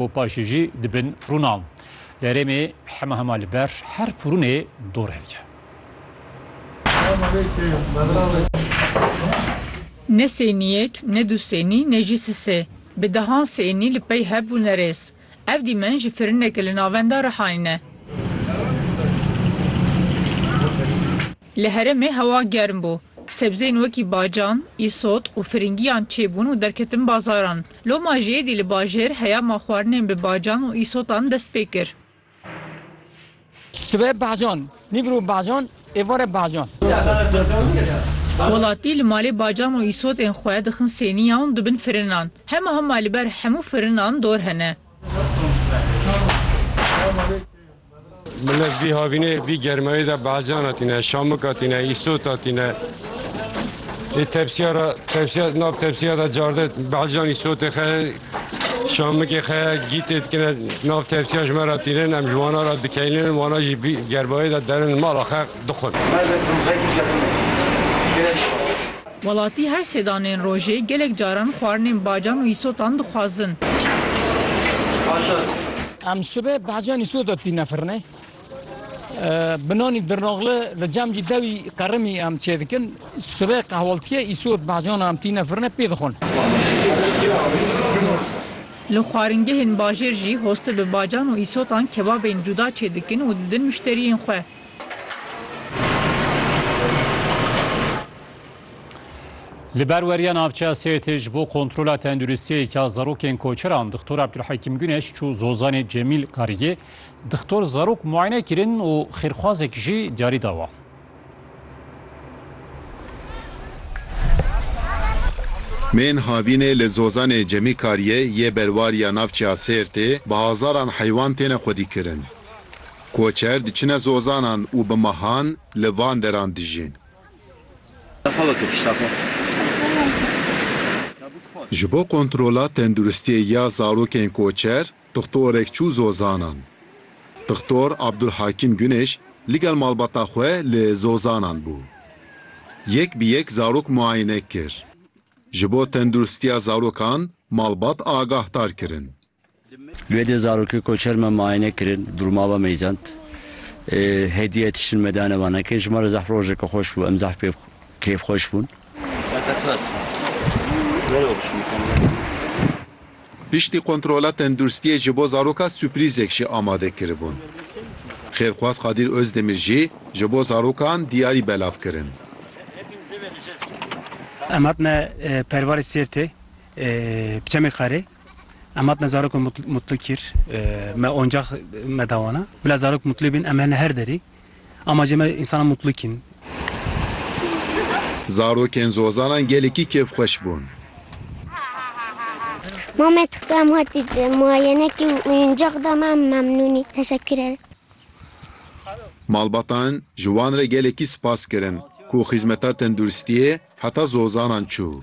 û paşê jî dibin firûnan. Derêmê hema hema li ber her firûnê dor heye. Ne sênî yek, ne du sênî, ne jî si sê. Bi dehan sênî li pey hev bûne rêz. Ev dîmen ji firîneke li navenda Rihayê ne. Li herêmê hewa germ bû. Sebzeyên wekî bacan, îsot û firingiyan çêbûn û derketin bazaran. Loma jî êdî li bajêr heya ma xwarinên bi bacan û îsotan dest pê kir. Sibe bacan, nîvro bacan, êvare bacan. Welatî li malê bacan û îsotên xwe dixin sêniya ûn dibin firinan. Hema hema li ber hemû firinan dor hene. Millet vî havînê vî germayê de bacana tîne, şamika tîne, îsota tîne. Ê tepsiya ra tepsiya nav tepsiya da carde bacan îsotê xe şamikê xe gîtê dikine nav tepsiya ji me ra tînin em ji wana ra dikeynin wana jî vî germayê de derin mala xe dixwin. Welatî her sê danên rojê gelek caran xwarinên bacan û îsotan dixwazin. Em sibe bacan îsota tîne firnê. Bi nanî dirnoxli li cem jî dewî qerimî em çêdikin. Sibe qehwaltiyê îsot bacana em tîne firnê pê dixwin. Li xwaringehên bajêr jî hoste bi bacan û îsotan kebabên cuda çêdikin û didin muşteriyên xwe. Li ber weriya navçeya Sêrtê ji bo kontrola tenduristiyê ya zarokên koçeran Dixtor Abdulhekîm Guneş çû Zozanê Cemîl Kariyê. Dixtor zarok muayene kirin û xêrxwazek jî diyarî da wan. Mên havînê li Zozanê Cemî Kariyê yê berwariya navçeya Sêrtê bi hezaran heywan têne xwedîkirin. Koçer diçine zozanan û bi mehan li van deran dijîn. Ji bo kontrola tenduristiyê ya zarokên koçer dixtorek çû zozanan. Dixtor Abdulhakîm Gunêş ligel malbata xwe li zozanan bû. Yek bi yek zarok muayene kir. Ji bo tenduristiya zarokan malbat agahdar kirin. Li wê dê zarokê koçer me miayene kirin, durma ve meyzend. Hediye tiştin me dane van heke. Ji me re zehf rojeke xweş bû, em zehf pê kêfxweş bûn. Piştî kontrola tendurstiyê ji bo zaroka suprîzek jî amade kiribûn. Xêrxwaz Qadîr Ozdemir jî ji bo zarokan diyarî belav kirin. Em hatine Pervalê Sêrtê, bi çemê Xerê. Em hatine zarokê mutlu kir. Me oncax me da wana. Bila zarok mutlu bin em hene her derê. Amacê me însana mutlu kin. Zarokên Zozanan gelekî kêfxweş bûn. Ma me tixta em hatî muayenekî û oyuncax da me em memnûnî. Teşekkür ere. Malbatan ji wan re gelekî spas kirin ku xîzmeta tenduristiyê heta Zozanan çû.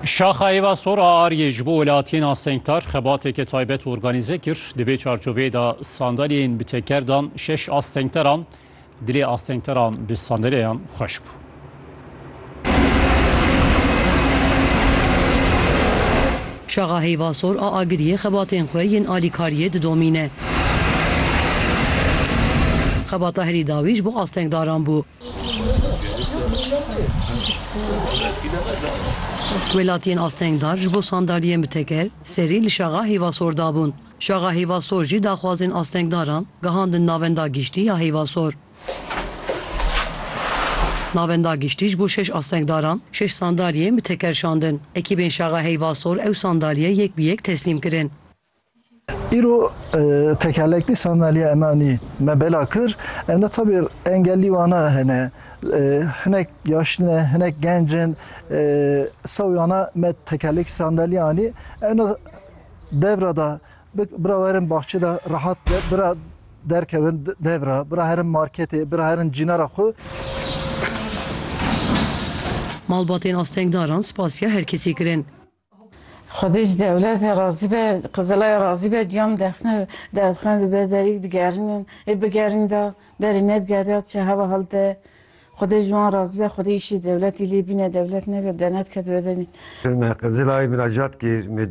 Şaxa Êva Sor a Aryê ji bo welatiyên astengtar xebateke taybet organîze kir. Di vê çarçoveyê de sandalyeyên bi teker dan şeş astengteran. Dilê astengteran bi sandalyeyan xweş bû. Şaxa Hêva Sor a Agiriyê xebatên xwe yên alîkariyê didomîne. Xebata herî dawî ji bo astengdaran bû. Welatiyên astengdar ji bo sandalyeyên bi teker serî li Şaxa Hîvasor dabûn. Şaxa Hîvasor jî daxwazên astengdaran gihandin Navenda Giştî ya Hîvasor. Navenda Giştî ji bo şeş astengdaran şeş sandalyeyên bi teker şandin. Ekîbên Şaxa Hîvasor ew sandalyeyê yek bi yek teslîm kirin. Îro tekerlekli sandalya emanî me bela kir. Em de tabî engellî wana hene. Hinek yaştin e, hinek genc in. Sewî wana me tekerlekî sandalya anî. Em de devra da bira werin baxçe de rehat be, bira derkevin devra, bira herin marketê, bira herin cînara xwe. Malbatên astengdaran spasiya her kesî kirin. Xwedî ji dewlete razî be, Qizilaya razî be, ciyan bidexşîne, derdixe dibe, derî digerînin, ê bigerîn da, berî nedigerîya çi heva hal de. Xwedê ji wan razî be, xwedê îşê dewletî lê bîne, dewlet nebe, denet ke dibe denîn. Me Qizilayê miracat kir.